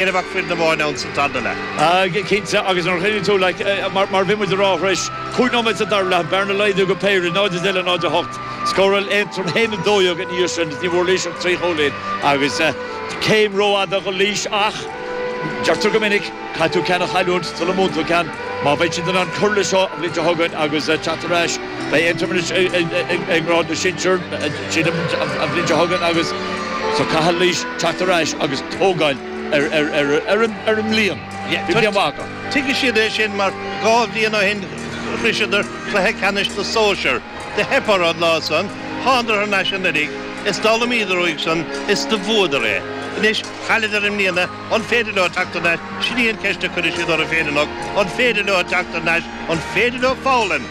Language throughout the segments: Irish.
éinne ach foireann amháin ann san tarna leath. Á cinnte, agus nuair a chuimhníonn tú, like, mar bhí muid ag rá thar éis cúig nóiméad sa dara leath, bearna laghdú go péire, 0-10 le 0-8. Scóráil Aontroim a haon a dó dhéag ina dhiaidh sin, is ní bhfuair Laois ach trí chúilín, agus céim rófhada go Laois ach, deirtear go minic, caithfidh tú ceann a chailliúint sula mbuann tú ceann. Má bheidh siad in ann cur le seo an bhliain seo chugainn agus teacht ar ais, Beidh Aontroim thuas ag grád na sinsear arís an bhliain seo chugainn agus so caithfidh Laois teacht ar ais agus tógáil ar an mbliain. Bhí bliain mhaith acu. Tuigfidh siad é sin mar dhá bhliain ó shin shroiseadar cluiche ceannais na sóisear. Do theip orthu an lá san, thánadar thar n-ais anuiridh is d'fhoghlaimíodar uaidh san is do bhuadar é. Anois chailleadar i mbliana, an féidir leo teacht thar n-ais? Sin í an cheist a chuirfidh siad orthu féin anocht, an féidir leo teacht thar n-ais, an féidir leo foghlaim?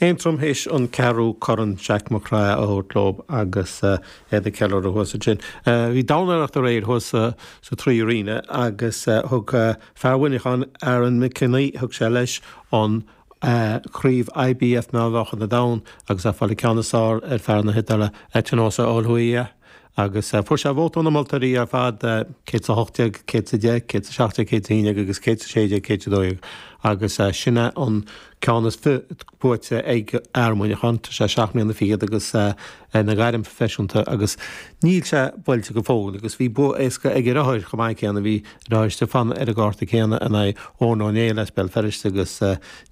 Aontroim théis an ceathrú corn Jack McGrath a thabhairt leo agus iad ag ceiliúradh thuas ansin. Bhí dornálaíocht aréir thuas sa Trí Arena agus thug fear Mhuineacháin, Aaron Mac Cionnaith, thug sé leis an craobh IBF Meánmheáchain an Domhain agus é ag fáil an ceann is fearr ar fear na hIodáile, Etinosa Oliha. Agus fuair sé vóta ó na moltóirí ar fad, céad is a hocht déag, céad is a deich, céad is a seacht déag, céad is a haon déag agus céad is a sé déag, céad is a dó dhéag. Agus sin é an ceann is buaite ag fear Mhuineacháin. Tá sé seacht mbliana fichead agus é ina ghairm phroifisiúnta agus níl sé buailte go fóill. Agus bhí bua éasca ag a dheartháir chomh maith céanna, bhí a dheartháir Stiofán ar an gcárta céanna in aghaidh Eoin Ó Néill as Béal Feirste agus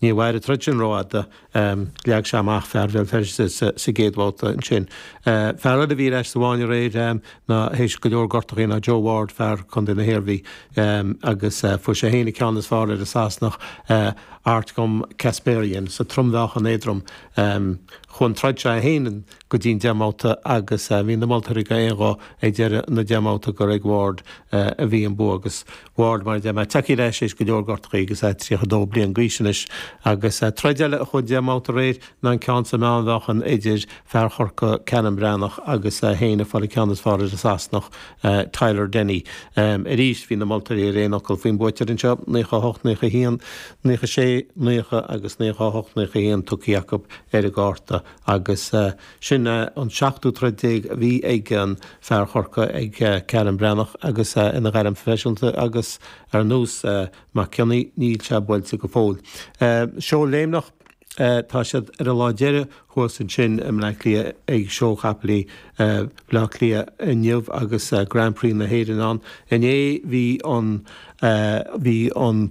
níor mhair an troid sin rófhada. Leag sé amach fear Bhéal Feirste sa gcéad bhabhta ansin. Fear eile a bhí ar ais sa bhfáinne aréir ná théis go leor gortuithe ná Joe Ward, fear Chontae na hIarmhí, agus fuair sé féin an ceann is fearr ar an Sasanach Artjom Kasparian sa trom-mheáchan éadrom. Chuaigh an troid seo í féin go dtí an deich mbabhta agus bhí na moltóirí go aon ghuth ag deireadh na deich mbabhta gur ag Ward a bhí an bua agus Ward mar the mba teacaí leis éis go leor gortachaí agus é 32 bliain d'aois anois agus troid eile a chuaigh deich mbabhta aréir ná an ceann sa meánmheáchan idir fear Chorcaí Callum Breathnach agus é féin ag fáil an ceann is fearr ar an Sasanach Tyler Denny arís bhí na moltóirí ar aon fhocal faoin buaiteoir anseo 98 91 96 90 agus 98 91 tugthaí acu ar an gcárta agus Sin an seachtú troid déag a bhí ag an fear Chorcaí, ag Callum Breathnach, agus ina ghairm phroifisiúnta agus ar nós Mac Cionnaith, níl sé buailte go fóill. Seó léimneach, tá siad ar a lá deireadh thuas ansin i mBleá Cliath ag Seó Chapaill Bhleá Cliath inniu agus Grand Prix na hÉireann ann. Inné bhí an, bhí an.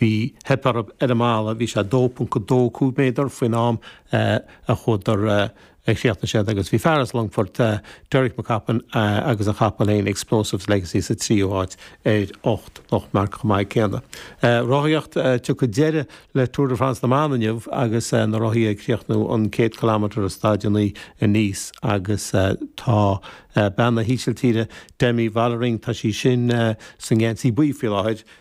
bhí, theip orthu ar an mballa, bhí sé 2.25 méadar faoin am a chuadar, a chríochnaigh siad agus bhí fear as Longfort, Derek McCoppin agus a chapall féin, Explosives Legacy sa tríú háit ar ocht lochtmharc chomh maith céanna. Rothaíocht, Tiocfaidh deireadh le Tour de France na mban inniu agus na rothaithe ag críochnú an 100 kilometre i staid a naoi i Nice agus tá bean na hÍsiltíre, Demi Vollering, tá sí sin sa ngeansaí buí faoi láthair,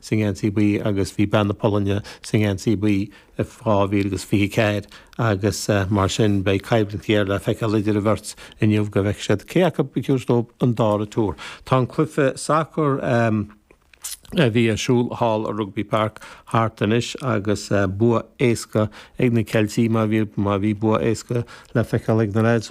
sa ngeansaí buí agus bhí bean na Polainne sa ngeansaí buí i 2024 agus mar sin beidh coimhlint ghéar le feiceáil idir an bheirt inniu go bhfeicfidh siad cé acu a chrochfas leo an dara Tour. Tá an cluiche sacair a bhí ar siúl thall i Rugby Park thart anois agus bua éasca ag na Ceiltigh má bhí bua éasca le feiceáil ag na Reds.